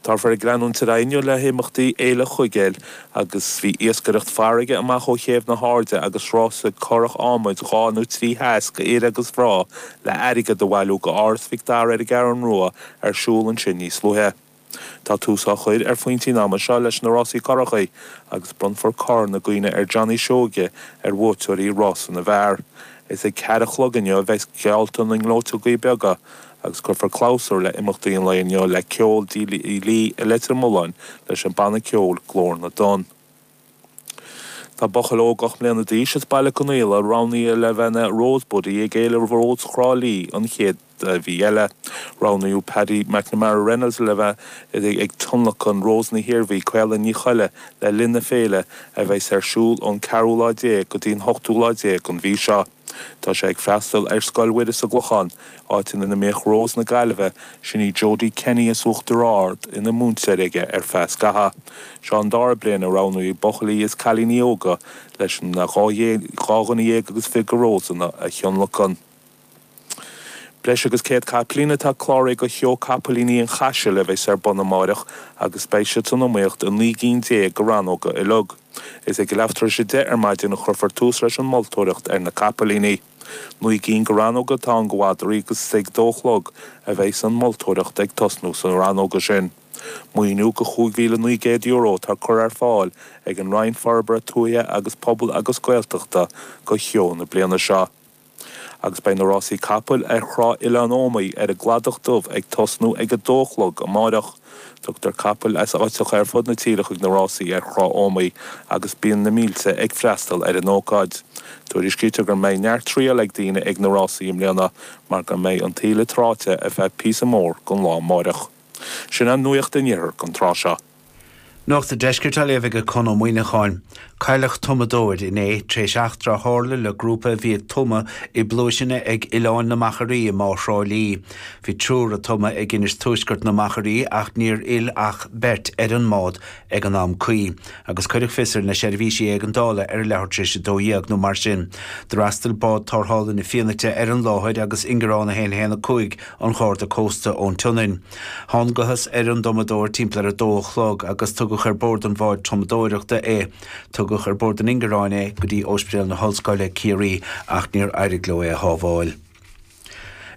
Táthar ag leanúint ar aghaidh inniu le himeachtaí Fhéile Chuigéil agus bhí iascaireacht farraige amach ó chéibh na hAirde agus rásaí curach adhmaid dhá nó trí sheas go fhir agus mhná le airgead a bhailiú go Áras Mhic Dara ar an gCeathrú Rua ar siúl ansin níos luaithe. Tá tús á chur ar phointí an ama seo leis na rásaí currachaí agus bronnfar corn i gcuimhne ar Johnny Seoige ar bhuaiteoirí rása na bhfear. Is ag ceathair a chlog inniu a bheas geallta na ngleoiteogaí beaga a agus cuirfear clabhsúr le himeachtaí an lae inniu le ceol Tigh Lee i Leitir Mealláin leis an banna ceoil Glór na dTonn. Tá buachaill óg ocht mbliana d'aois as Baile Conaola roghnaithe le bheith ina 'Rose Buddy' ag Fhéile Rós Thrá Lí an chéad mhí eile. Roghnaíodh Paddy McNamara Reynolds le bheith ag tionlacan Rós na hIarmhí, Caolan Ní Cholla le linn na féile a bheas ar siúl ón ceathrú lá déag go dtí an hochtú lá déag den mhí seo. Tá sé ag freastal ar Scoil Mhuire sa gClochán, áit ina mbíodh Rós na Gaillimhe, sin í Jodie Kenny as Uachtar Ard, ina múinteoir aige ar feadh scatha. Seo an dara bliain a roghnaíodh buachaillí is cailíní óga leis an dá dhuine dhéag agus fiche go Rósanna a thionlacan. Breis agus 100 capaillín atá cláraithe go Sheó Capaillíní an Chaisil a bheas ar bun amáireach agus beidh siad san iomaíocht i naoi gcinn déag de rannóga uilig. Is ag a leath tar éis a deich ar maidin a chuirfear tús leis an moltóireacht ar na capaillíní. Naoi gcinn de rannóga atá ann go mhadraí agus is ag dó a chlog a bheas an mholtóireacht ag tosnú sna rannóga sin. Maoiniú go €5,900 atá curtha ar fáil ag an Roinn Forbartha Tuaithe agus Pobail agus Gaeltachta go sheó na bliana seo. agus beidh na rásaí capall ar thrá Oileán Iomaí ar an gCladach Dubh ag tosnú ag a dó a chlog amáireach. Tugtar capaill as áiteacha ar fud na tíre chuig na rásaí ar thrá Iomaí agus bíonn na mílte ag freastal ar an ócáid. Tuairiscítear gur mbeidh neart triail ag daoine ag na rásaí i mbliana mar go mbeidh an taoille tráite ar feadh píosa mór den lá amáireach. Sin í nuacht an iarthair an tráth seo. Nuacht an deiscirt á léamh aige Conn Ó Muíneacháin. Cailleadh tumadóir inné tar éis eachtra a tharla le grúpa a bhí ag tumadh i bpluaiseanna ag Oileáin na Machairí i mBá Thrá Lí. Bhí triúr ag tumadh ag Inis Tuaisceart na Machairí ach níor fhill ach beirt ar an mbád ag an am cuí agus cuireadh fios ar na seirbhísí éigeandála ar a leathuair tar éis a dó dhéag nó mar sin. D'fhreastail bád tarrthála na Fianaite ar an láthair agus ingearán 1 1 5 an Gharda Cósta ón tSionainn. Thángathas ar an dtumadóir timpeall ar a dó a chlog agus tugadh ar bord an bháid tumadóireachta é. Tugadh ar bord an ingearáin é go dtí Ospidéal na hOllscoile, Ciarraí, ach níor éirigh leo é a shábháil.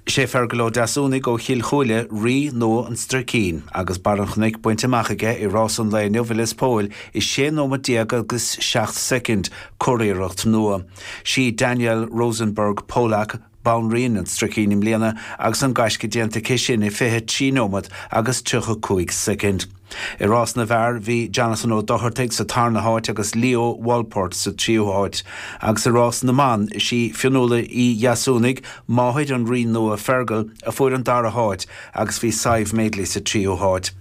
Is é Fergal Ó Deasúnaigh ó Chill Chúile rí nua an Stricín agus barr an chnoic bainte amach aige i rás an lae inniu i Lios Póil i 16 nóimeat agus 7 soicind. Curiarracht nua. Sí Danielle Rosenberg Polak, Banríon an Stricín i mbliana agus an gaisce déanta aici sin i 23 nóiméad agus 35 soicind. I rás na bhfear, bhí Jonathan Ó Dochartaigh sa tarna háit agus Leo Walport sa tríú háit, agus i rás na mban, is í Fionnuala Uí Dheasúnaigh, máthair an rí nua Fergal, a fuair an dara háit agus bhí Sadhbh Madeley sa tríú háit.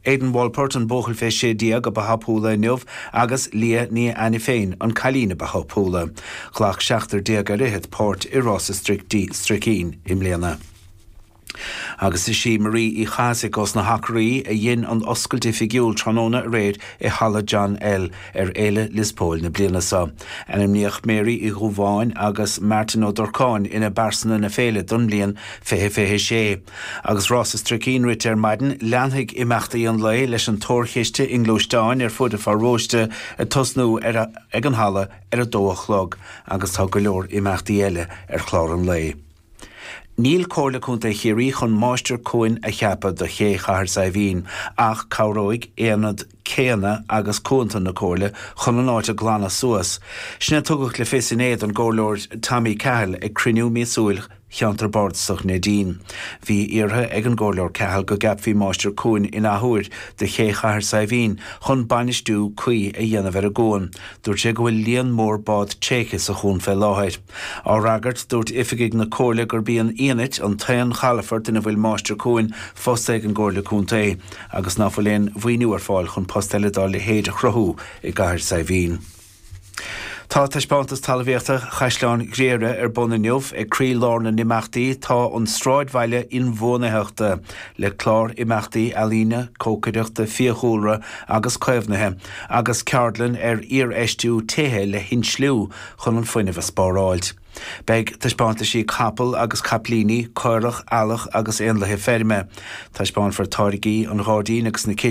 Aidan Wolpert, an buachaill fé 16 ba thapúla inniu agus Leah Ní Ainiféin, an cailín ba thapúla. Ghlac seachtar déag ar fhichead páirt i Rás an Stricín i mbliana. Agus is í Marie Uí Chathasaigh ós na hAcraí a dhein an oscailt oifigiúil tráthnóna aréir i Halla John L. Ar Fhéile Liospóil na bliana seo, ainmníodh Mary Uí Dhúbháin agus Martin Ó Durcáin ina bPearsana na Féile don mbliain 2026. Agus Rás an Stricín rite ar maidin, leanfaidh imeachtaí an lae leis an dtóraíocht chiste i ngluaisteáin ar fud an pharóiste ag tosnú ag an halla ar a dó a chlog agus tá go leor imeachtaí eile ar chlár an lae. Níl Comhairle Contae Chiarraí chun Máistir Cuain a cheapadh do Ché Chathair Saidhbhín ach cabhróidh aonad céanna agus cuanta na Comhairle chun an áit a ghlanadh suas, sin é a tugadh le fios inné don gComhairleoir Tommy Cahill ag cruinniú míosúil Cheantar Bardasach Neidín. Bhí iarrtha ag an gComhairleoir Cahill go gceapfaí Máistir Cuain in athuair do Ché Chathair Saidhbhín chun bainistiú cuí a dhéanamh ar an gcuan. Dúirt sé go bhfuil líon mór bád tréigthe sa chuan fé láthair. Á fhreagairt, dúirt oifigigh na Comhairle gurb í an Fhianait an t-aon chalafort ina bhfuil Máistir Cuain fostaithe ag an gComhairle Contae agus ná fuil aon mhaoiniú ar fáil chun post eile dá leithéid a chruthú i gCathair Saidhbhín. Tá Taispeántas Talmhaíochta Chaisleán Ghriaire ar bun inniu ag croí lár na n-imeachtaí tá an Sráidbhaile Inbhuanaitheachta le clár imeachtaí ealaíne, cócaireachta, fiadhúlra agus caomhnaithe agus ceardlann ar iarfheistiú tithe le hinsliú chun an fuinneamh a spáráilt. Beidh taispeántaisí capall agus caiplíní, caorach, eallach agus éanlaithe feirme. Taispeánfar táirgí an ghairdín agus na.